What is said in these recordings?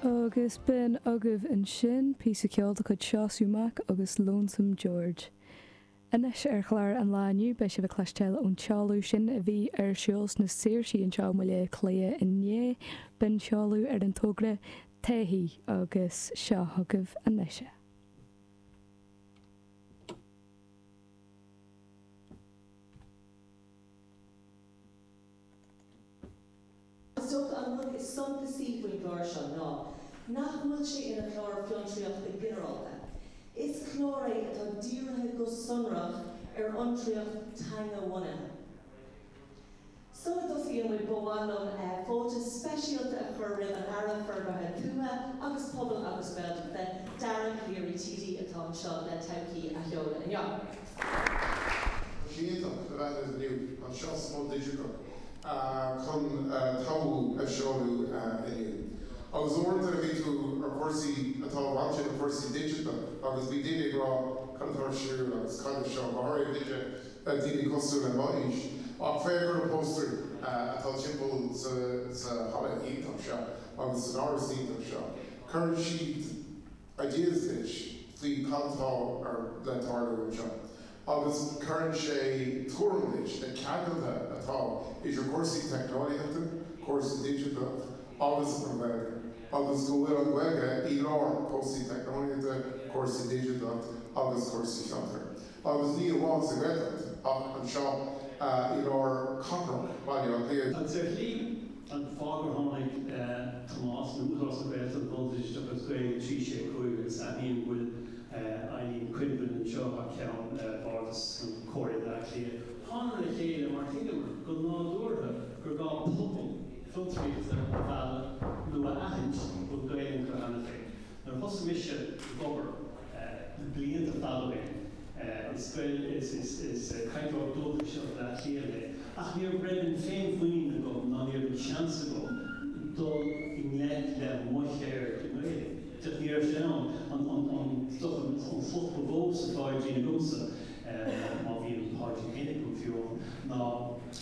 Agus b'in agaibh ansin píosa ceoil de chuid Seosamh Mac agus Lonesome George. Anois ar chlár an lae inniu beidh sibh ag cloisteáil ón tseoladh sin a bhí ar siúl sna Saoirsí anseo i mBaile Átha Cliath inné, b'in seoladh ar an togra 'Todhchaí' agus seo chugaibh anois é. Is dócha an rud is suntasaí faoin gclár seo ná nach bhfuil sé ina chlár fiontraíochta ginearálta. Is clár é atá dírithe go sonrach ar fhiontraíocht teanga-bhunaithe. Sula dtosaíonn muid ba mhaith liom fáilte speisialta a chur roimh an Aire Forbartha Tuaithe agus Pobail agus Gaeltachta, Dara Calleary TD, atá anseo le Todhchaí a sheoladh inniu. Tá sé iontach a bheith libh inniu anseo sa Mol Digiteach chun Todhchaí a seoladh inniu. Agus uaireanta a bhí tú ar chúrsaí atá bainte le cúrsaí digiteach agus bhí daoine ag rá cad atá ar siúl agus cad é seo, go háirithe duine, daoine cosúil le mo aois. Ach féach ar na póstaerí atá timpeall sa halla iontach seo agus san áras iontach seo. Cuireann siad. a deir Fitch faoi cad atá le tarlú anseo agus cuireann sé tuairim leis na ceangailthe atá idir cúrsaí teicneolaíochta, cúrsaí digiteacha agus an Ghaeilge agus go bhfuil an Ghaeilge i lár cúrsaí teicneolaíochta, cúrsaí digiteacha agus cúrsaí fiontar. agus ní amháin sa Ghaeltacht ach anseo i lár cathrach Bhaile Átha Cliath. Sé sin an fáth gur tháinig Tomás, nó Údarás na Gaeltachta, Bord Oideachais agus Gaeilge 3 6 5 agus aithním go bhfuil Eileen Quinlivan anseo thar ceann Bhardas Chomhairle Bhaile Átha Cliath, thánamar le chéile mar thuigeamar go nádúrtha gur gá pobal fiontraíochta a mhealladh nó a aithint go bhfuil Gaelainn acu cheana féin. Nuair a thosaigh mise ag obair. Le blianta d'fhág mé an scoil is cainteoir dúchais ó Bhaile Átha Cliath mé ach ní raibh an féinmhuinín agam ná ní raibh an seans agam dul i ngleic le mo cheird i nGaeilge. Féach, ní raibh sé ann, an stuif, an focal ba mhó sa phaidrín agamsa, má bhí an paidrín féin agam, fiú amháin, ná.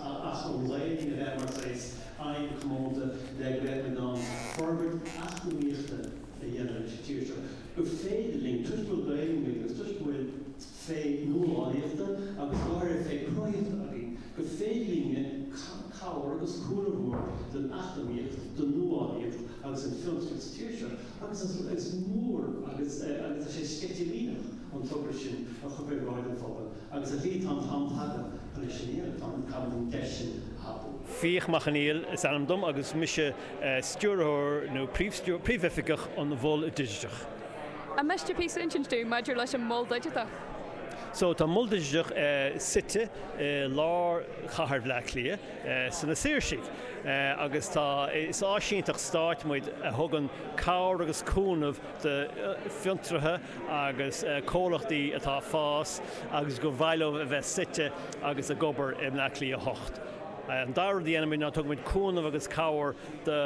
Ach an Ghaeilge a bheith mar ghléas oibre comónta le go mbeidh muid in ann forbairt eacnamaíochta a dhéanamh ins an tír seo, gur féidir linn, toisc go bhfuil Gaeilge againn agus toisc go bhfuil féith nuálaíochta agus go háirithe féith cruthaíochta againn, gur féidir linne cabhair agus cúnamh a thabhairt don eacnamaíocht, don nuálaíocht agus don fiontraíocht sa tír seo. Agus is mór agus tá sé sceitimíneach an togra sin a chur faoi bhráid an phobail. Agus a Mhí, tá an t-am tagtha anois i ndiaidh don Coimisiún an deis sin a thapú. Fiach Mac Conghail is ainm dom agus mise stiúrthóir nó príomhoifigeach an Mhol Digiteach. An miste píosa a insint dúinn maidir leis an Mol Digiteach? So, tá an Mol Digiteach suite i lár chathair Bhleá Cliath, sna Saoirsí. Agus tá, is áisínteacht stáit muid a thugann cabhair agus cúnamh do fiontraithe agus comhlachtaí atá ag fás agus gur mhaith leo a bheith suite agus ag obair i mBleá Cliath 8. An dara rud a dhéanaimid ná tugann muid cúnamh agus cabhair do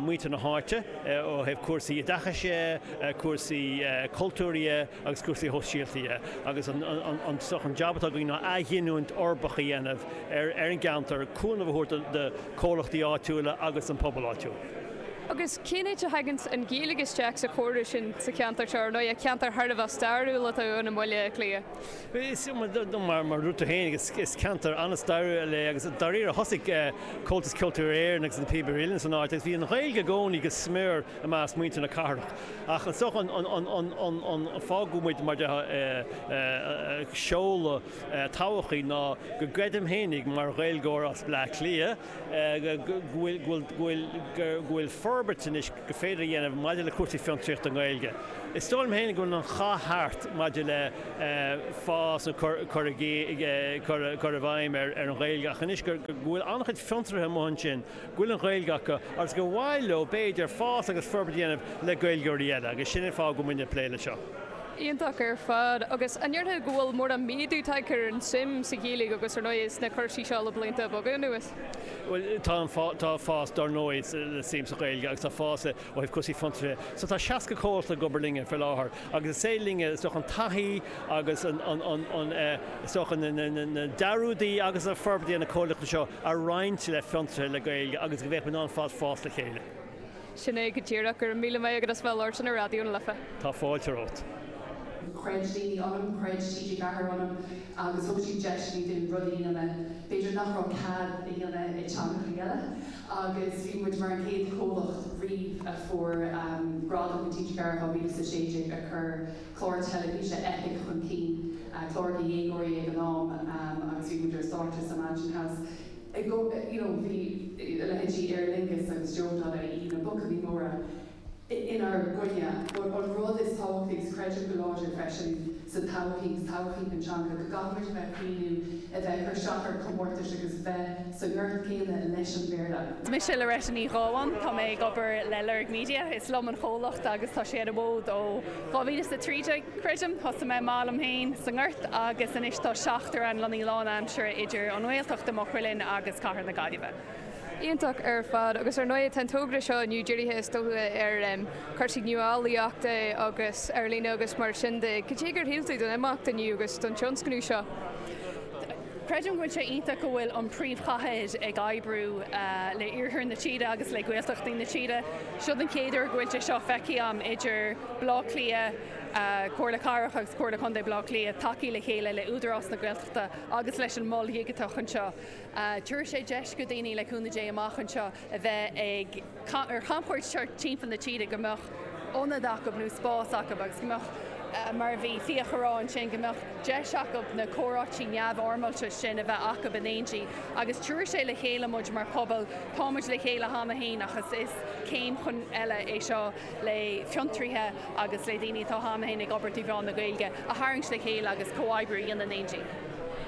mhuintir na háite ó thaobh cúrsaí oideachais dhe, cúrsaí cultúir dhe agus cúrsaí shóisialta dhe. Agus an jab atá againn ná athghiniúint uirbeach a dhéanamh ar an gceantar, cúnamh a thabhairt do chomhlachtaí áitiúla agus don phobal áitiúil. Agus cén áit a thagann an Ghaeilge isteach sa chomhrá sin sa cheantar seo, ar ndóigh, ceantar thar a bheith stairiúil atá ann i mBaile Átha Cliath? Bhuel, is cuma dom, mar a dúirt tú féin, is ceantar an-stairiúil é agus dáiríre thosaigh Comhaltas Ceoltóirí Éireann agus Na Píobairí Uilleann san áit agus bhí an Ghaeilge i gcónaí go smior i measc muintir na cathrach. Ach is dócha an fáth go bhfuil muid, mar a déarfá, ag seoladh Todhchaí ná go gcreidim fhéinig, mar Ghaeilgeoir as Bleá Cliath, go bhfuil forbairt anois gur féidir a dhéanamh maidir le cúrsaí fiontraíochta i nGaeilge. Is dóigh liom féin go bhfuil an chath thart maidir le fás nó cur i gcur i bhfeidhm ar an Ghaeilge ach anois go bhfuil an-chuid fiontraithe amuigh ansin go bhfuil an Ghaeilge acu agus gur mhaith leo, b'fhéidir, fás agus forbairt a dhéanamh le Gaeilgeoirí eile agus sin an fáth go bhfuil muid ag plé leis seo. Iontach ar fad. Agus an ndéarfá go bhfuil mórán méadú tagtha ar an tsuim sa Ghaeilge agus, ar ndóigh, sna cúrsaí seo le blianta beaga anuas? Bhuel, tá an, tá fás, dár ndóigh, sa suim sa Ghaeilge agus tá fás ó thaobh cúrsaí fiontraithe. So tá 60 comhalta ag obair linne faoi láthair agus is féidir linne, is dócha, an taithí agus an, an, an, an eh, is dócha, na, na, na, na dea-rudaí agus na forbairtí ar na comhlachtaí seo a roinnt le fiontraithe le Gaeilge agus go mbeadh muid in ann fás, fás le chéile. Sin é go díreach. Go raibh míle maith agat as bheith ag labhairt linn ar Raidió na Life. Tá fáilte romhat. Chreid daoine ionam, chreid TG4 ionam agus thug siad deis dúinn rudaí a dhéanamh b'fhéidir nach raibh cead a dhéanamh i dteangachaí eile agus bhí muid mar an chéad chomhlacht riamh a fuair gradam ó TG4 in 2016 ag cur clár teilifíse Eipic chun cinn, clár do dhéagóirí ag an am, agus bhí muid ar stáitse sa Mansion House. I go, you know, bhí a leithéidí Aer Lingus agus Joe.ie na buachaillí móra inár gcoinne, but an rud is tábhachtaí, agus creidim go láidir freisin sa todhchaí, sa todhchaí na teanga, go gcaithfimid a bheith ag cuimhneamh a bheith ag cur isteach ar comórtais agus bheith sa ngort céanna leis an Bhéarla. Mise Loretta Ní Ghabháin, tá mé ag obair le Lorg Media, is liom an chomhlacht agus tá sé ar an bhfód ó. 2013, creidim. Thosaigh mé amach liom féin sa nGort agus anois tá seachtar againn, lonnaithe lánaimseartha idir an nGaeltacht i Maigh Cuilinn agus cathair na Gaillimhe. Iontach ar fad, agus ar ndóigh tá an togra seo inniu dírithe is dócha ar chúrsaí nuálaíochta agus ar líne agus mar sin de. Cad é gur shíl tú den imeacht inniu agus den tionscnamh seo? Creidim go bhfuil sé iontach go bhfuil an príomhchathair ag oibriú le iarthar na tíre agus le Gaeltachtaí na tíre. Seo an chéad uair go bhfuil sé seo feicthe agam idir Baile Átha Cliath, Comhairle Cathrach agus Comhairle Contae Bhaile Átha Cliath ag teacht le chéile le Údarás na Gaeltachta agus leis an Mol Digiteach anseo. Tabharfaidh sé deis do dhaoine le cúnamh Dé amach anseo a bheith ag ar chamchuairt thart timpeall na tíre, go mbeadh ionad acu nó spás acu agus go mbeadh, mar a bhí Fiach ag rá ansin, go mbeadh deis acu na comhráití neamhfhoirmeálta sin a bheith acu in éindí. Agus tabharfaidh sé le chéile muid mar phobal, táimid le chéile cheana féin ach is céim chun eile é seo le fiontraithe agus le daoine atá cheana féin ag obair trí mheán na Gaeilge a tharraingt le chéile agus comhoibriú a dhéanamh in éindí.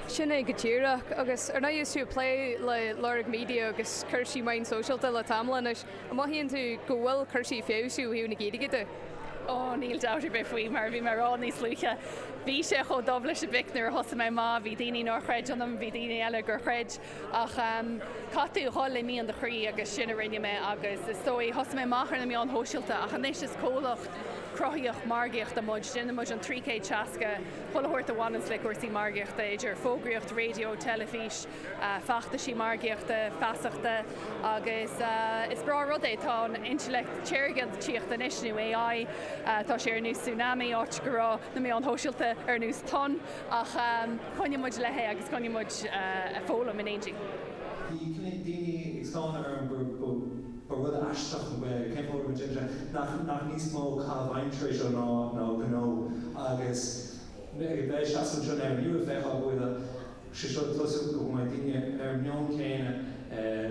Sin é go díreach, agus ar ndóigh is tú ag plé le Lorg Media agus cúrsaí meáin sóisialta le tamall anois, an mothaíonn tú go bhfuil cúrsaí ag feabhsú ó thaobh na Gaeilge de? Ó, níl dabht ar bith faoi, mar a bhí mé ag rá níos luaithe, bhí sé chomh dubh leis an bpic nuair a thosaigh mé amach, bhí daoine nár chreid ionam, bhí daoine eile gur chreid. Ach caithfidh tú a dhul le mian do chroí agus sin a rinne mé agus is dóigh, thosaigh mé amach ar na meáin shóisialta ach anois is comhlacht cruthaitheach margaíochta muid, déanann muid an 360 pull a thabhairt a bhaineanns le cúrsaí margaíochta, idir fógraíocht raidió, teilifís, feachtaisí margaíochta, feasachta agus is breá rud é, tá an intleacht shaorga ag tíocht anois, nó AI, tá sé ar nós tsunami, áit go raibh na meáin shóisialta ar nós tonn. Ach coinneoidh muid léi agus coinneoidh muid ag foghlaim in éindí. Bhí cnoic daoine ag stánadh orm, ba rud aisteach cén fáth a raibh muid imithe, nach níos mó caitheamh aimsire é seo ná gnó agus ag a bheith seasamh anseo inniu ag feiceáil go bhfuil sé seo ag tosú go mbeidh daoine ar an meon céanna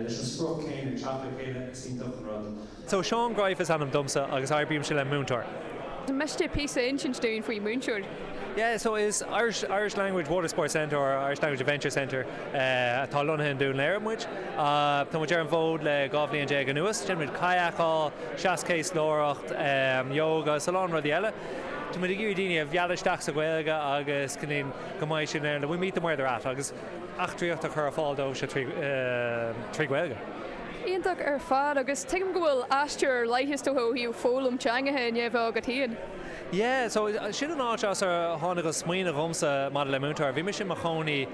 leis an sprioc céanna ag teacht le chéile is iontach an rud. So, Seán Greif is ainm domsa agus oibrímse le Moontour. An miste píosa a insint dúinn faoi Moontour? Yeah, so is Irish, Irish Language Water Sports Centre or Irish Language Adventure Centre eh atá lonnaithe i nDún Laoghaire muid. Ah tá muid ar an bhfód le dhá bhliain déag anuas. Déanann muid kayak-áil, seaschéaslóireacht, em yoga is a lán rudaí eile. Tá muid ag iarraidh daoine a mhealladh isteach sa Ghaeilge agus go ndéan go mbeidh siad in ann, we meet them where they're at agus eachtraíocht a chur ar fáil dóibhse trí eh trí Ghaeilge. Iontach ar fad, agus tuigim go bhfuil aistear ar leith, is dócha, ó thaobh foghlaim teangacha i ndiaidh a bheith agat féin. Yeah, so sin an áit as ar tháinig an smaoineamh dhomsa maidir le Moontour. Bhí mise i mo chónaí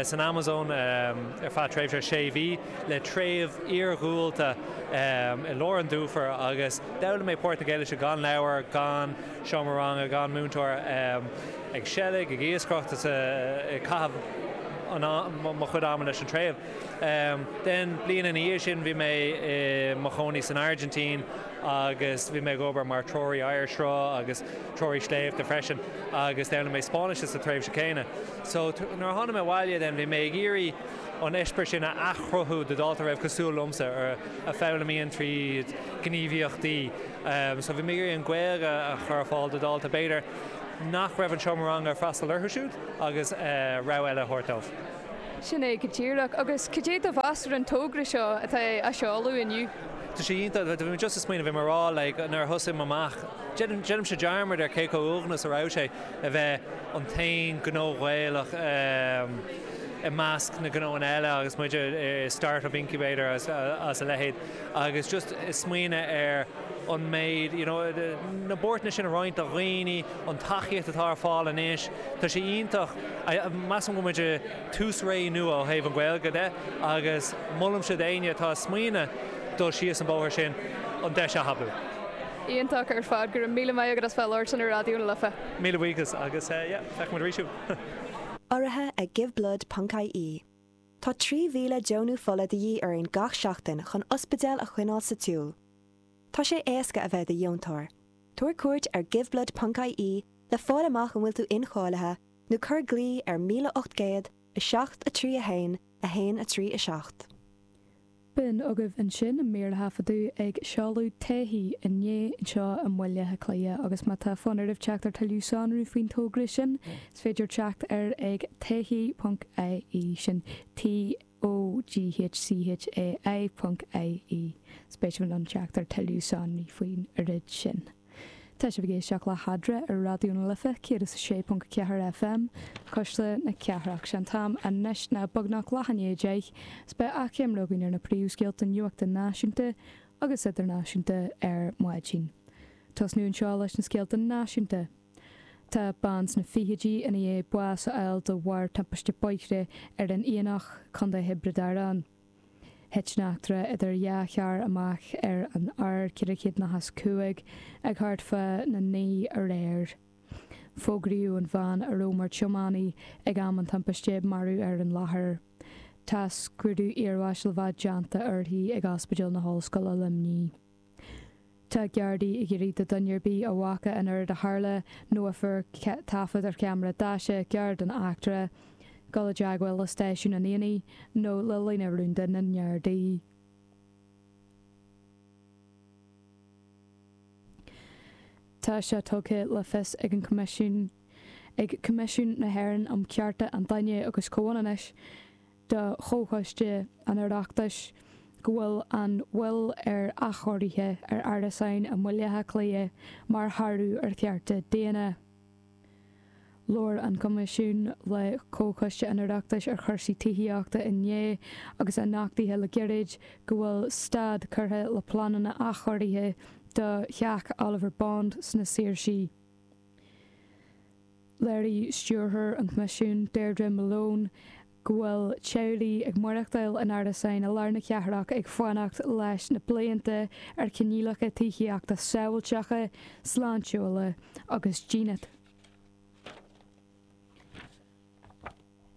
san Amazon ar feadh tréimhse sé mhí le treibh iargúlta i lár an dufair agus d'fhoghlaim mé Portaingéilise gan leabhair, gan seomra ranga, gan múinteoir, ag seilg, ag iascaireacht is ag caitheamh mo chuid ama leis an treibh. Then bliain ina dhiaidh sin bhí mé i mo chónaí san Airgintín agus bhí mé ag obair mar threoraí oighearshruth agus treoraí sléibhte freisin agus d'fhoghlaim mé Spáinnis sa tréimhse céanna. So nuair a tháinig mé abhaile then bhí mé ag iarraidh an eispéireas sin a athchruthú do dhalta a raibh cosúil liomsa, a foghlaimíonn tríd gníomhaíochtaí. So bhí mé ag iarraidh an Ghaeilge a chur ar fáil do dhalta b'fhéidir nach raibh an seomra ranga ag freastal orthu siúd agus rogha eile a thabhairt dóibh. Sin é go díreach. Agus cad é do mheas ar an togra seo atá á seoladh inniu? Tá sé iontach. Bhí mé just ag smaoineamh bhí mé ag rá like nuair a thosaigh mé amach, déanaimse dearmad ar cé chomh uaigneach is a raibh sé a bheith an t-aon gnó Ghaelach i measc na gnóanna eile agus muid i start-up incubator agus a leithéid agus just ag smaoineamh ar an méid you know na buairteanna sin a roinnt do dhaoine an tacaíocht atá ar fáil anois, tá sé iontach. Measaim go bhfuil muid i tús ré nua ó thaobh an Ghaeilge de agus molaimse d'éinne atá ag smaoineamh dul síos an bóthar sin an deis a thapú. Iontach ar fad. Go raibh míle maith agat as bheith ag labhairt linn ar Raidió na Life. Míle buíochas agus yeah, feicfidh muid arís thú! Urraithe ag Giveblood.ie Tá 3,000 deonú fola de dhíth orainn gach seachtain chun ospidéil a choinneáil sa tsiúl. Tá sé éasca a bheith i do dheontóir. Tabhair cuairt ar giveblood.ie le fáil amach an bhfuil tú incháilithe nó cuir glao ar 1800 731 137. B'in agaibh ansin an mír a taifeadadh ag seoladh Todhchaí inné anseo i mBaile Átha Cliath agus má tá fonn oraibh teacht ar tuilleadh sonraí faoin togra sin is féidir teacht air ag todhchai.ie, sin T. O D H C H A I.ie más spéis libh teacht ar tuilleadh sonraí faoin rud sin. Tá sibh ag éisteacht le hEadra ar Raidió na Life 106.4 FM, Cuisle na Cathrach. Sé an t-am anois ná beagnach leath i ndiaidh a deich, is beidh achoimre againn ar na príomhscéalta nuachta náisiúnta agus idirnáisiúnta ar maidin. Tosnú anseo leis na scéalta náisiúnta. Tá bean sna fichidí i ndiaidh bás a fháil de bharr timpiste bóthair ar an Aonach, Co Thiobraid Árann. Thit an eachtra idir dhá charr amach ar an R405 ag thart fána naoi aréir. Fógraíodh an bhean a raibh mar tiománaí ag am an timpiste marbh ar an láthair. Tá scrúdú iarbháis le bheith déanta uirthi ag Ospidéal na hOllscoile Luimnigh. Tá Gardaí ag iarraidh ar dhuine ar bith a bhfaca an oiread a tharla nó a fuair taifead ar cheamara deaise carr den eachtra, dul i dteagmháil le stáisiún an Aonaigh nó le líne rúnda na nGardaí. Tá sé tugtha le fios ag an Choimisiún ag Coimisiún na hÉireann um Chearta an Duine agus Comhionannais, do Chomhchoiste an Oireachtais go bhfuil an mhoill ar athchóirithe ar árasáin i mBaile Átha Cliath mar shárú ar chearta daonna. Labhair an Coimisiún le Comhchoiste an Oireachtais ar Chúrsaí Tithíochta inné agus é nochtaithe le gairid go bhfuil stad curtha le pleananna athchóirithe do Theach Oliver Bond sna Saoirsí. Léirigh Stiúrthóir an Choimisiúin, Deirdre Malone, go bhfuil teaghlaigh ag maireachtáil in árasáin i lár na cathrach ag fanacht leis na blianta ar choinníollacha tithíochta sábháilteacha, sláintiúla agus dínit.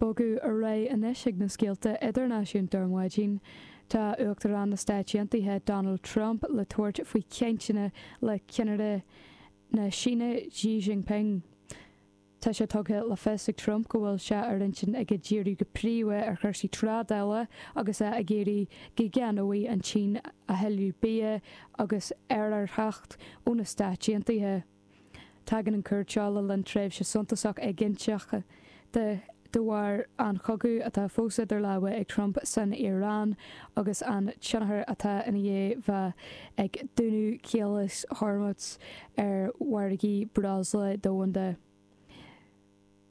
Bogadh ar aghaidh anois chuig na scéalta idirnáisiúnta ar maidin. Tá Uachtarán na Stáit Aontaithe Donald Trump le tabhairt faoi chainteanna le ceannaire na Síne Xi Jinping. Tá sé tugtha le fios ag Trump go bhfuil sé ar intinn aige díriú go príomha ar chúrsaí trádála agus é ag iarraidh go gceannóidh an tSín a thuilleadh bia agus aerárthach ó na Stáit Aontaithe. Tagann an chuairt le linn tréimhse suntasach éiginnteach de bharr an chogaidh atá fós idir lámha ag Trump san Iaráin agus an tionchar atá i ndiaidh a bheith ag dúnadh Chaolas Hormuz ar mhargaí breosla domhanda.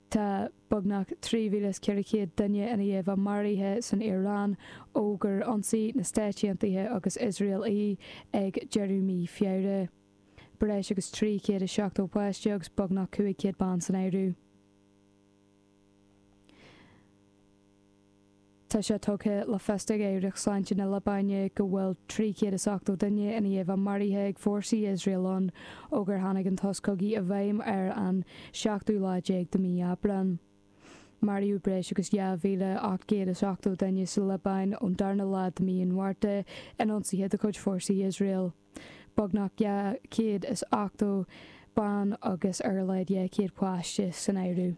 Tá beagnach 3,400 duine i ndiaidh a bheith maraithe san Iaráin ó gur ionsaigh na Stáit Aontaithe agus Iosrael í ag deireadh mí Feabhra. breis agus 370 páiste agus beagnach 500 bean san áireamh. Tá sé tugtha le fios ag Aireacht Sláinte na Liobáine go bhfuil 380 duine i ndiaidh a bheith maraithe ag fórsaí Iosrael ann ó gur tháinig an sos cogaidh i bhfeidhm ar an seachtú lá déag de mhí Aibreáin. Maraíodh breis agus 2,880 duine sa Liobáin ón darna lá de mhí an Mhárta in ionsaithe de chuid fórsaí Iosrael. beagnach 280 bean agus ar a laghad 200 páiste san áireamh.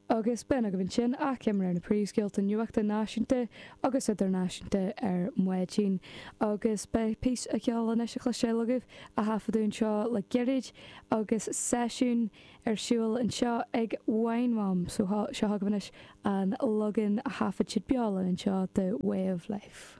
Agus b'in agaibh ansin, achoimre ar na príomhscéalta nuachta náisiúnta agus idirnáisiúnta ar maidin. Agus beidh píosa ceoil anois le cloisteáil agaibh, a taifeadadh anseo le gairid, agus seisiún ar siúl anseo ag Wine Mum, so seo chugaibh anois an leagan a thaifead siad beo linn anseo de Way of Life.